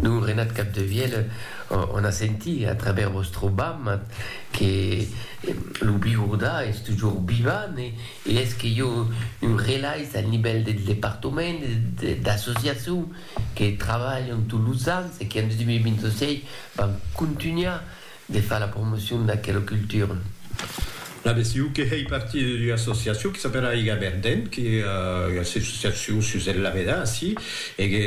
Lo Renat Capdevielle en a sentit a travèrs vòstre bam que lo Bigourda es tujor vivant e es que i a un relais al nivèl del departament e d'associacion que trabalhan tots los ans e que en 2026 van contunhar De far la promocion d'aquela cultura. La BCU que hèi partir d'ua associacion que s'apèla Aiga Verden, que ua associacion sus el lavedar ací, e que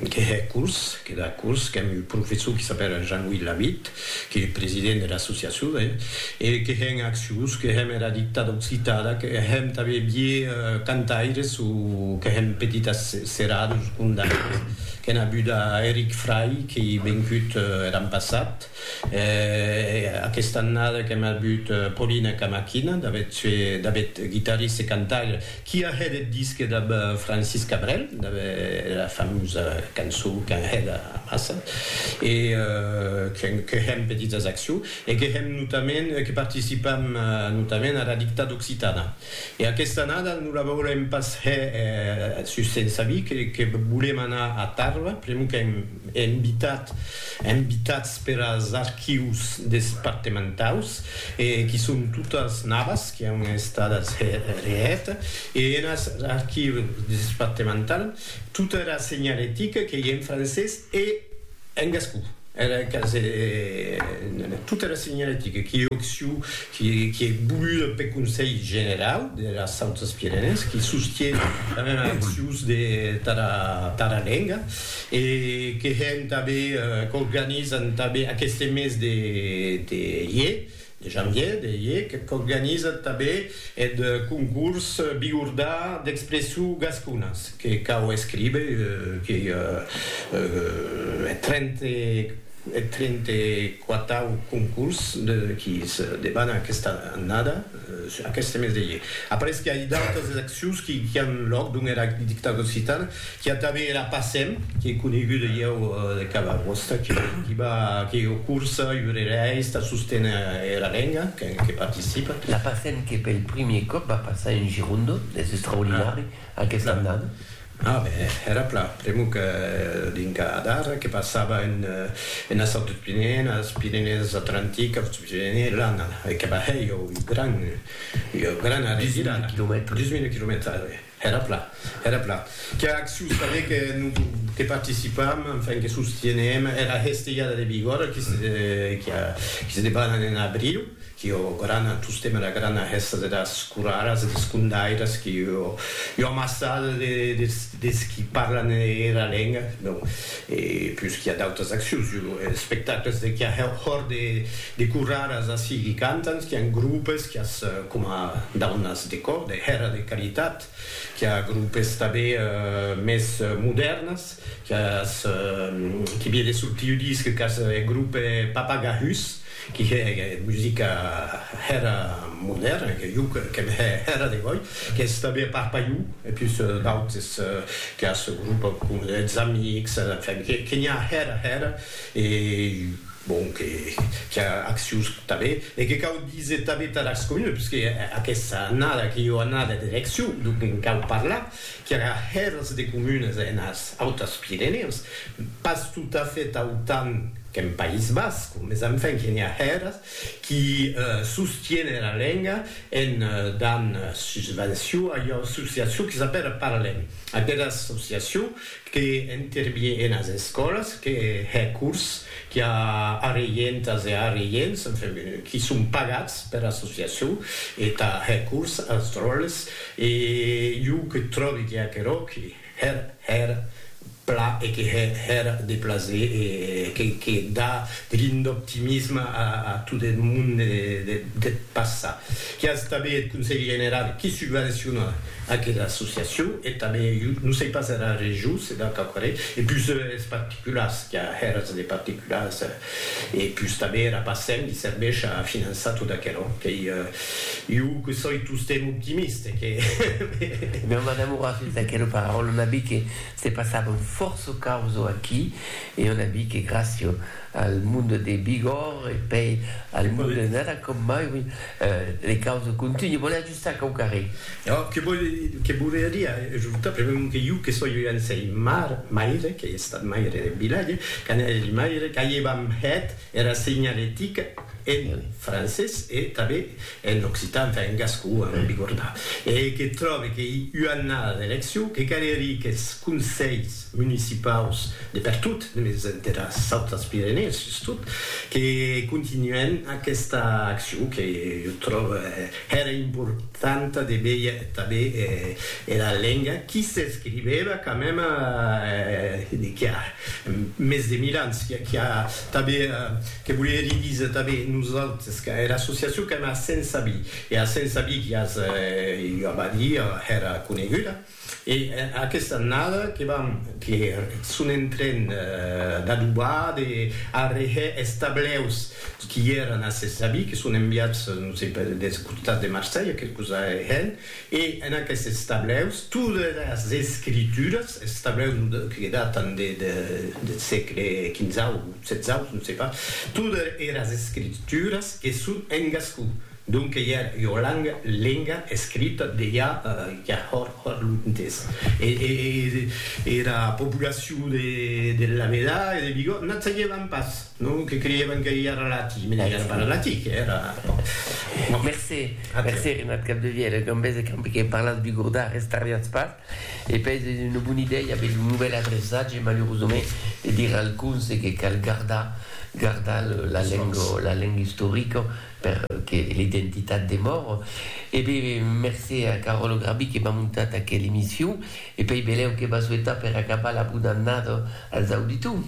que hè curs, que da curs, qu'èm un professor que s'apèla Jean-Louis Lavitte, qu'ei president de l'associacion, hè, e que hè en accions, que hèm era dictada occitana, que hèm tanben vier cantaires o que hèm petitas Serà dus condamnats que n'a buda Eric Fray que i vencut er an passat e aquesta annada que m'a but Paulina Camaquina d'aver tué David guitarriste cantaire qui a hèt eth disque dab Francis Cabrel dab era famosa cançó qu'an hèt amassa e que hèm petitas accions e que hèm notament que participam notament ara dictada occitana. E aquesta annada non la veurem pas hè sus sens amic que volem anar a Tàrrega, pr'amor qu'èm invitat, invitats per as archius despartementaus e qui son totas navas qui an estadas hè reèt e enas archius despartemental tota era senhalética qu'ei en francés e En gascon, era encara se didie tota era senhaletica qu'ei occiu qui ei voluda peth Conselh Generau deras Autas Pirenèes, qui sostie tanben era accius de tara lenga e que hèn tanben, qu'organizan tanben aqueste mes de ier, Janvier, d'Eiec, qu'organizat tabé eth concurs Bigordà d'expressou gasconas, que cau escríber qu'ei eth trenta-e-quatau concurs qui se debana aquesta annada, aqueste mes d'Eiec. Après que ai d'autas accions qui an lòc dont era Dictadura Occitana, Qu'i a tanben era Passem, qu'ei coneguda ieu de cada gosta que diba que ieu cursa, iurereis, tà sosténer era lenga, que participa. La Passem que pel primier còp va passar en Girondo, es extraordinari aquesta annada. A ben, era pla, pr'amor que dinca d'ara que passava enas Autes Pirenèes, enas Pirenèes Atlantiques, Autes Pirenèes, l'ana, e que va hèr ieu gran, ieu gran arregir ara. Dusmila quilomètres. Dusmila quilomètres, ara. Era plan, era plan. Qu'a acciu saber que no que participam, enfin que sostienem era hestejada de Bigòrra qui se qui a qui se debanan en abriu, qui o grana tostemp era grana hesta de das coraras e des condairas qui o ua amassada de des des qui parlan era lenga, bon, e pus qui a d'autas accius, jo espectacles de qui a hòr de de coraras ací qui cantan, qui an grupes, qui as coma daunas. Decor de hèra de qualitat, qui a grupes tanben mès modèrnes, qui a es qui vie de sortir ua disc qu'as eth grupe Papagahus, qui hè musica hèra modèrna, que jo qu'aime hè hèra de gòi, qu'es tanben Parpaillou, e pus d'autes qui as grupe com Eths Amics, enfin, que n'i a hèra hèra, e. Bon, que qu'i a accions tanben e que cau díser tanben tà las comunes, puisque aquesta annada qu'ei ua annada d'eleccion, donc en cau parlar qu'i aurà hèrs de comunes enas Autas Pirenèus, pas totafèt autant qu'en País Basc, mes enfin que n'i a hèrs qui sostienen la lenga en dan susvenció a ua associacion qui s'apèla Parlem, aquera associacion que intervie enas escòlas, que hè cors, qu'i a arreientas e arreients, enfin, qui son pagats per associacion, e tà hè cors as dròlles, e jo que tròbi que aquerò que hèr hèr pla e que hè hèr de plaser e que que dà de lin d'optimisme a a tot eth monde deth passat. Qu'i as tanben eth Conselh Generau qui subvenciona Aquela associacion e tanben, jo non sei pas era region, se deu quauquarren, e pus es particulars, qu'a hèras de particulars, e pus tanben era Bacen li serveish a finançar tot aquerò, qu'ei, jo que soi tostemp optimist e que me. Mèu madame aurà fes d'aquela paraula una bi que se passava un fòrço causo aquí e una bi que gràcia al monde de Bigòrre e pei al monde de Nada com mai, oui, le causo continue. Volèatz. Sa cau carré. Ò, que vòle, que volerie ajortar, premèu que iu que soi un sei mar, maire, qu'ei estat maire de vilatge, quand eri maire, qu'aievam hèt era seignalética en francés e tanben en occitan, enfin en gascon, ara me bigorda, e que tròbe qu'ei ua annada d'eleccion, que calerie qu'es conselhs municipaus de pertot, mès entera Sautras Pirenèes sustot, que continuèn aquesta accion que jo tròbe, Hèra importanta de véier tanben era lenga qui s'escrivèva quand mème qui a mès de mil ans, qui a tanben, que volie hèr disa tanben nosautes, era associacion qu'èm a Sensabí, e a Sensabí qui as ua badia hèra coneguda. E aquesta annada que vam que son en tren d'adobar, de arrehè es tableus qui èran a ses avis, que son enviats, non sei per, des costats de Marselha, quelcos arrehèn, e en aquestes tableus todas las escrituras, es tableus non de, que datan de, de, deth sègle quinzau, setzau, non sei pas, todas eras escrituras que son en gascon. Donque ja ua langa, lenga, escrita de ja ja hòr hòr lontes. E era populacion de de Lameda e de Vigo n'ac sagevan pas, non? Que creievan que ja era latin, mès ja era pas latin, que era, bon. Mercé, mercé Renat Capdevièlh, e qu'en bèse qu'en que parlatz bigordà restarriatz pas, e pèi es ua bona idèia aver lo novèl adreçatge, malerosament, de dire al conse que cal gardar gardar la lenga la lenga istorica, per que l'identitat demòr e be mercé a Caròlo Grabi que m'a montat aquel emission e pei belèu que va souetar per acabar la bona annada als auditors.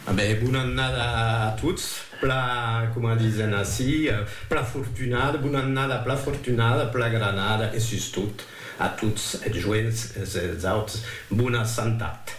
A be bona annada a tots, pla coma disen ací pla fortunada, bona annada pla fortunada, pla granada e sustot a tots es joents e es autres bona santat.